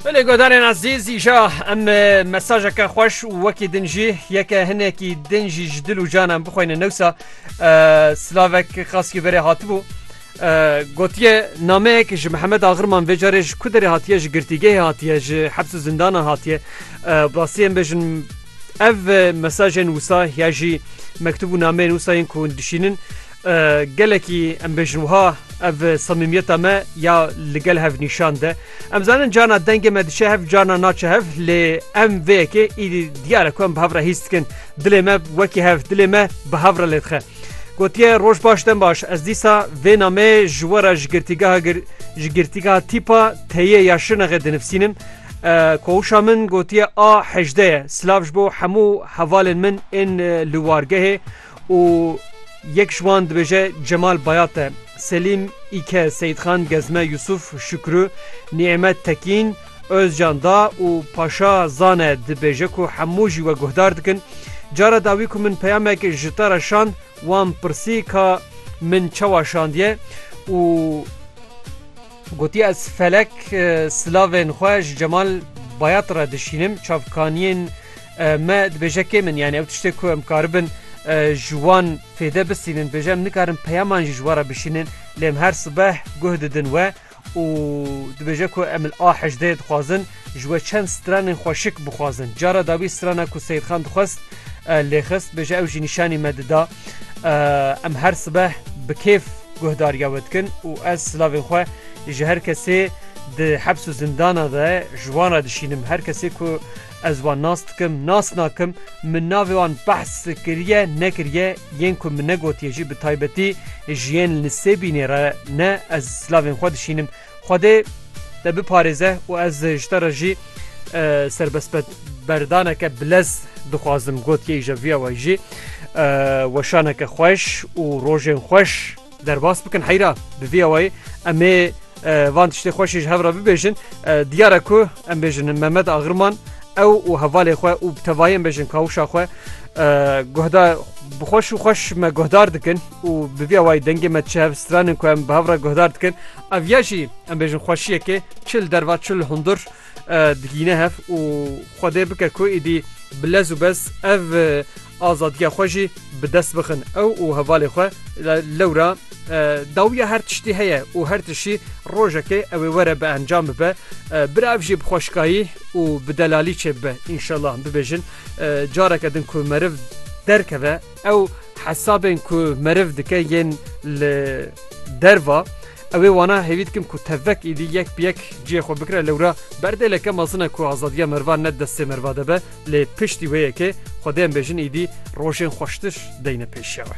Belê godarên ezîz îja em mesajeke xweş û wekî din jî yeke hinekî din jî ji dil û can em bixweyne newsa silavek xaskî berê hatibû. Gotiye nameyek ji Mihemed Axirman vê carê ji ku derê hatiye ji girtîgehê hatiye ji hebs û zindana hatiye rastiyê em bêjin ev mesajên wisa ya jî mektub û nameyên wisa yên ku dişînin Gelekî em bêjin wiha ev samîmiyeta me ya li gel hev nîşan de. Em zanin cana dengê me diçe hev cana naçe hev lê em vê yekê îdî diyare ku em bi hev re hîs dikin. Dilê me wekî hev dilê me bi hev re lê dixe. Gotiye roj baş dem baş ez dîsa vê nameyê ji we re ji girtîgeha ji girtîgeha tîpa teyê ya şinexê dinivsînim. Koşa min gotiye a hejdeye silav ji bo hemû hevalên min ên li wargehê. û yek ji wan dibêje Cemal Bayat e, Selîm Îke, Seyîdxan Gezme, Yusuf Şukru, Nîemet Tekîn, Ozcan Da û Paşa Zane dibêje ku hemû jî we guhdar dikin. Cara dawî ku min peyamek ji te re şand wan pirsî ka min çawa şandiye û gotiye ez felek silavên xwe ji Cemal Bayat re dişînim, çavkaniyên Me dibêje kê min yani ew tiştê ku em karibin ji wan fêde bisînin dibêje em nikarin peyaman jî ji we re bişînin lê em her sibeh guh didin we û dibêje ku em li a hejdeyê dixwazin ji we çend stranên xweşik bixwazin cara dawî strana ku Seyidxan dixwest lêxist bêje ew jî nîşanî me dida em her sibeh bi kêf guhdariya we dikin û ez silavên xwe ji her kesê di hebs û zindana de ji wan re dişînim her kesê ku Ez wan nas dikim, nas nakim, min navê wan behs kiriye, nekiriye, yên ku min negotiye jî bi taybetî ji yên li Sêbînê re ne, ez silavên xwe dişînim. Xwedê te biparêze û ez ji te re jî serbestberdaneke bilez dixwazim, gotiye îja vîya we jî weşaneke xweş û rojên xweş. Derbas bikin heyra bi vî awayî em ê van tiştê xweş ji hev re bibêjin. Diyar e ku em bêjin Mehmet Agirman ew û hevalê xwe û bi tevahî em bêjin kawişa xwe guhda bi xweş û xweş me guhdar dikin û bi vî awayî dengê me çi hev stranin ku em bi hev re guhdar dikin. Ev ya jî em bêjin xweşiyekê çi li derva çi li hundir. digîne hev û Xwedê bike ku êdî bi lez û bez ev azadiya xwe jî bi dest bixin. Ew û hevalê xwe lewra dawiya her tiştî heye û her tiştî rojekê ew ê were bi encam bibe. Bira ev jî bi xweşikayî û bi delalî çêbibe. Înşellah bibêjin careke din ku meriv derkeve. Ew hesabên ku meriv dike yên li derva ew ê wana hêvî dikim ku tevek êdî yek bi yek ciyê xwe bikire lewra berdêleke mezin e ku azadiya merivan ne di destê meriva de be lê piştî wê yekê xwedê em bêjin êdî rojên xweştir deyne pêşiya wê.